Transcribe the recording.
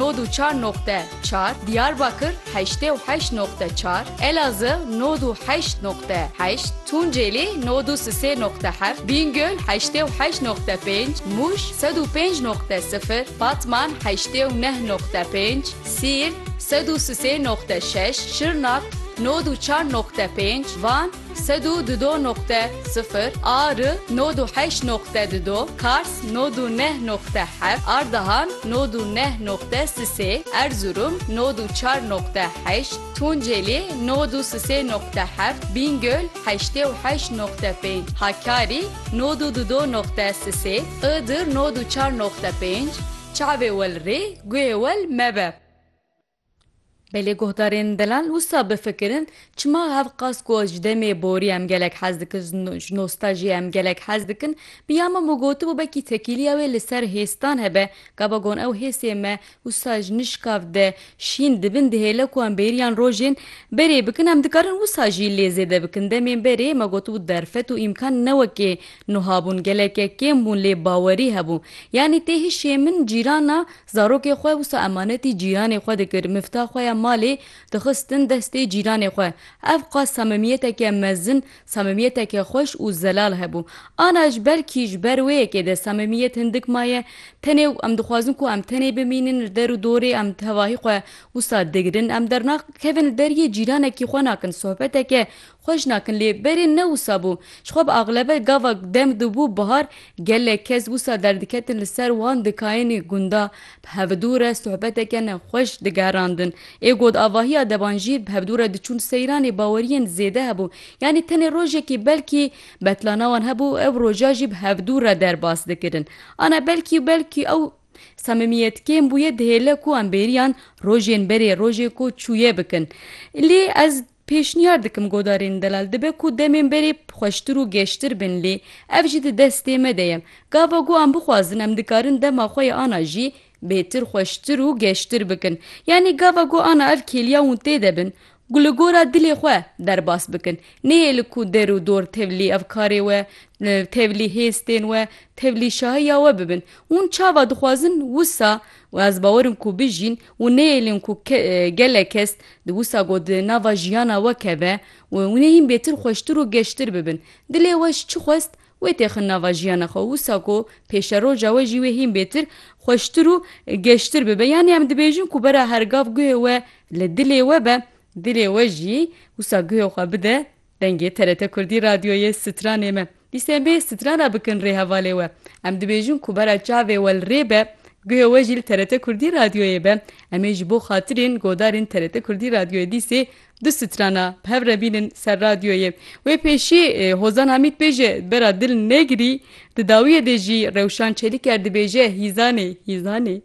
nod û çar noqte çar, Diyarbakir heştê û heşt noqte çar, Elazığ nod û heşt noqte heşt, Tunceli nod û sisê noqte heft, Bingöl heştê û heşt noqte pênc, Muş sed û pênc noqte sifir, Batman heştê û neh noqte pênc, Siirt sed û sisê noqte şeş, Şirnak nod û çar noqte pênc, Van, Sed û du do noqte sifir a ri nod û heşt noqte du do Kars nod û neh noqte heft Ardahan nod û neh noqte sisê Erzurum nod û çar noqte heşt Tunceli nod û sisê noqte heft Bîngöl heştê û heşt noqte pênc Hakkari nod û du do noqte sisê Iğdır nod û çar noqte pênc Çavê wel rê guhê wel mebe. Belê guhdarên delal wisa bifikirin çima hev qas ku ji demê borî em gelek hez dikin ji nostajiyê em gelek hez dikin bi ya Memo gotibû bekî tekîliya wê li ser hêstan hebe gava gon ew hêsê me wisa ji nişkav de şîn dibin dihêle ku em bêriyan rojên berê bikin em dikarin wisa jî lê zêde bikin demên berê me gotibû derfet û îmkan ne wekê nuha bûn geleke kêm bûn lê bawerî hebû yanî tê hişê min cîrana Zarokê xwe wisa emanetî cîranê xwe dikir, mifta xwe ya malê dixistin destê cîranê xwe. Ev qas samimiyeteke mezin, samimiyeteke xweş û zelal hebû. Ana ji ber kî ji ber wê yekê de samimiyet hindik maye, tenê û em dixwazin ku em tenê bimînin li der û dorê em tevahî xwe wisa digirin, em dernaxkevin li deriyê cîranekî xwe nakin sohbeteke Xwe ji nakin lê berê ne wisa bû. Ji xwe bi axlebe gava dem dibû bihar gelek kes wisa derdiketin li ser wan dikayênê gunda bi hevdû re sohbeteke ne xweş digerandin. Ê got avahiya deban jî bi hevdû re diçûn seyranê baweriyên zêde hebû. Yanî tenê rojekî belkî betlana wan hebû û ev roja jî bi hevdû re derbas dikirin. Ana belkî û belkî ew samimiyet kêm bûye dihêle ku em bêriyan rojên berê rojê ku çûye bikin. Lê ez. Pêşniyar dikim godarên delal dibe ku demên berê xweştir û geştir bin lê ev jî di destê me de ye. Gava ku em bixwazin em dikarin dema xwe yê ana jî bêtir xweştir û geştir bikin. Yanî gava ku ana ev kêliya hûn tê de bin ku li gora dilê xwe derbas bikin. Nêhêli ku der û dor tevlî evkarê we, tevlî hêstên we, tevlî şahiya we bibin. Hûn çava dixwazin wisa û ez bawer im ku bijîn Û nêelîn ku gelek kes di wisa ku di nava jiyana we keve û nê hîn bêtir xweştir û geştir bibin. Dilê we ji çi xwest wê têxin nava jiyana xwe û wisa ku pêşeroja we jî wê hîn bêtir xweştir û geştir bibe. Yanî em dibêjin ku bera her gav guhê we li dilê we be, dilê we jî wisa guhê xwe bide Dengê TRT Kurdî Radyoyê Stranê me. Dîsên bê stran re bikin rê hevalê we. Em dibêjin ku bera çavê we li rê be, guhê we jî li TRT Kurdî Radyoyê be. Em ê ji bo xatirên godarên TRT Kurdî Radyoyê dîsê du strana bi hev re bînin ser radyoyê. Wê pêşî Hozan Hamîd bêje bera dil negirî. Di dawiyê de jî Rewşan Çelîker dibêje hîzanê, hîzanê.